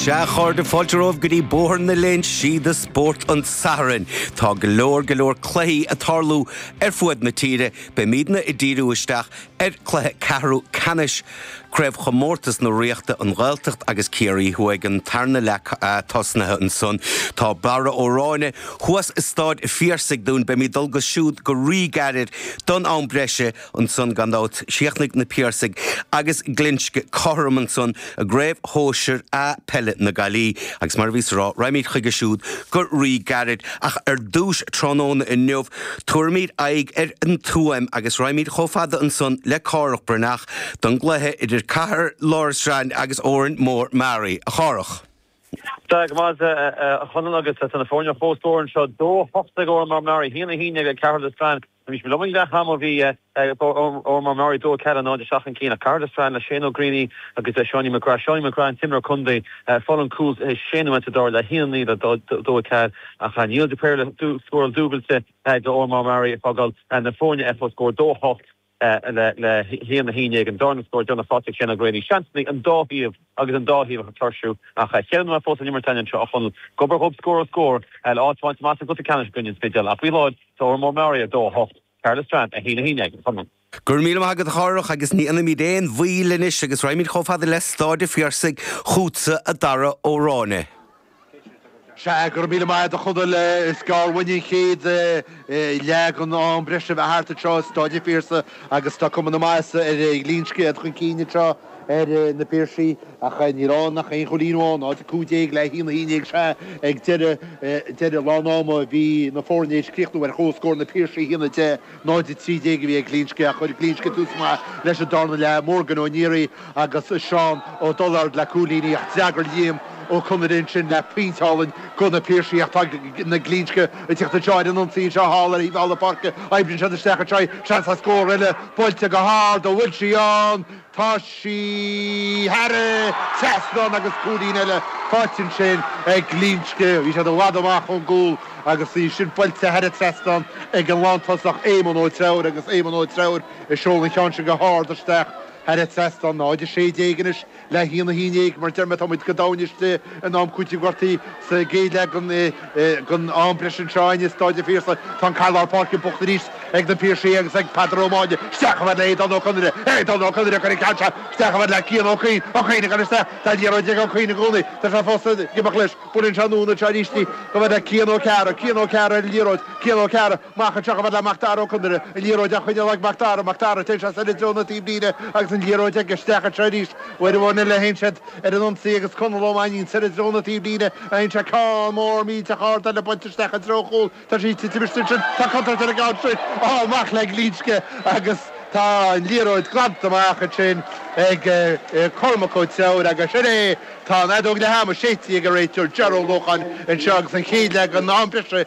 Sea, a chairde, fáilte romhaibh go dtí Bóthar na Léinsí do Spórt an tSathairn. Tá go leor, go leor cluichí ag tarlú ar fuaid na tíre. Beimídne ag díriú isteach ar chluiche ceathrú ceannais Craobhchomórtas na Ríochta, An Ghaeltacht agus Ciarraí Thuaidh, an tarna leath tosnaithe ansan. Tá Barra Ó Ráinne thuas i Stáid an Phiarsaigh dúinn. Beimid ag dul chuige siúd go ríghairid don am breise. Ansan, gan dabht, chríochnaigh na Piarsaigh agus Glinsce cothrom ansan i gCraobh Shóisir A Peile na Gaillimhe agus mar a bhíos ag rá, raghaimid chuige siúd go rí-gairid, ach ar dtúis tráthnóna inniu, tabharfaimid aghaidh ar an Tuaim agus raghaimid chomh fada ansan le Cárthach Breathnach don gcluiche idir Cathair Loistreáin agus Órán Mór Meáraí. A Chárthach. Tá go maith, a Chonaill, agus tá na foirne ar comhscór anseo, dó a hocht ag Órán Mór Meáraí, haon a haon déag ag Cathair Loistreáin. Bhí sé go lom ag leath am ó bhí Eoghan Mac Murchú, Dónall Ceallaigh, in airde isteach chun cinn ach ceard is fearr le Shane O Greaney agus le Seánie McGrath. Seánie McGrath, an t-imreoir contae, fol an cúl is sine uaitse dár le hAodh Ní le dó a cead a chaith. Neil de Paor le scóráil dúbailte d'Eoghan Mac Murchú ag fágáil na foirne FO scór 2-8 le hAodh na hAoine ag an dara scór. Déanadh Phátraic Shane O Greaney seans ina an dá thaobh. agus an dá thaobh ag tuirsiú. Ach cheil mé fós le n-imirt anseo, a Chonaill. Gob ar ghob scór ar scór, le áit a bhaint amach sa gcluiche ceannais i gcoinne an Spidéil. Ach faoi láthair, tá Órán Mór Meáraí, 2, 8, Cathair Loistreáin, 1, 11, a Chonaill. Go raibh míle maith agat, a Chárthach, agus ní dhéanfaimid aon mhoill anois agus raghaimid chomh fada le Stáid an Phiarsaigh chughatsa, a Dhara Ó Ráinne. Sea, go raibh míle maith agat, a Chonaill, is gearr uainn an chéad leath den am breise a bheith thart anseo i Stáid an Phiarsaigh agus tá cuma na maitheasa ar Ghlinsce, iad chun cinn anseo ar na Piarsaigh ach níl ann ach aon chúilín amháin, 0-15 le 1-11. Sea, ag deireadh, deireadh lán ama bhí na foirne tar éis críochnú ar chomhscór, na Piarsaigh 1-10. náid a trí déag a bhí ag Glinsce a chuir Glinsce tús maith leis an darna leath, Morgan Ó Neary agus Seán Ó Dullard le cúilíní ach d'fhreagair Liam Ó Conaire ansin le pointe álainn do na Piarsaigh ach tá na Glinsce ag teacht anseo ar an ionsaí anseo thall ar thaobh thall na páirce, oibríonn siad isteach anseo, seans le scór eile, buailte go hard, an bhfuil sí ann? Tá sí thar an trasnán agus cúilín eile faighte ansin ag Glinsce. Bhí siad i bhfad amach ón gcúl agus í sin buailte thar an trasnán ag an lántosach Éamonn Ó Treabhair agus Éamonn Ó Treabhair ag seoladh an cheann sin go hard isteach thar an trasnán. 0-16 anois le 1-11, mar a deirim tá muid go domhain istigh. in am cúitimh gortaithe sa gcéad leath den am breise anseo i Stáid an Phiarsaigh. Tá an cath lár páirce buachta arís ag na Piarsaigh agus ag Peadar Ó Máille. Isteach amuigh le hAodán Ó Conaire. Aodán Ó Conaire ag cur an ceann seo isteach amuigh le Cian Ó Cuinn. Ó Cuinn a chuir isteach. Tá liathróid ag Ó Cuinn i gcónaí. Tá sé fós ag imeacht leis. Buaileann sé anonn anseo arís amuigh le Cian Ó Cearra. Cian Ó Cearra ar an liathróid. Cian Ó Cearra. Mac an tSeachain le Mac Dara Ó Conaire, an liathróid á choinneáil ag Mac Dara, Mac Dara ag dul soir i dtreo na taobhlíne agus an liathróid aige, isteach anseo arís ó Aodh Ó Néill a théann siad ar an ionsaí agus Conall Ó Mainnín soir i dtreo na taobhlíne a fhaigheann sé ceann mór millteach ard eile bainte isteach i dtreo an chúil, tá sí ag titim istigh ansin, tá contúirt ar an gceann sin, á, amach le Glinsce agus tá an liathróid glanta amach ansin ag Cormac Ó Treabhair agus sin é, tá an fheadóg leath ama séidte ag an réiteoir Ger Ó Lócháin anseo agus an chéad leath gan am breise.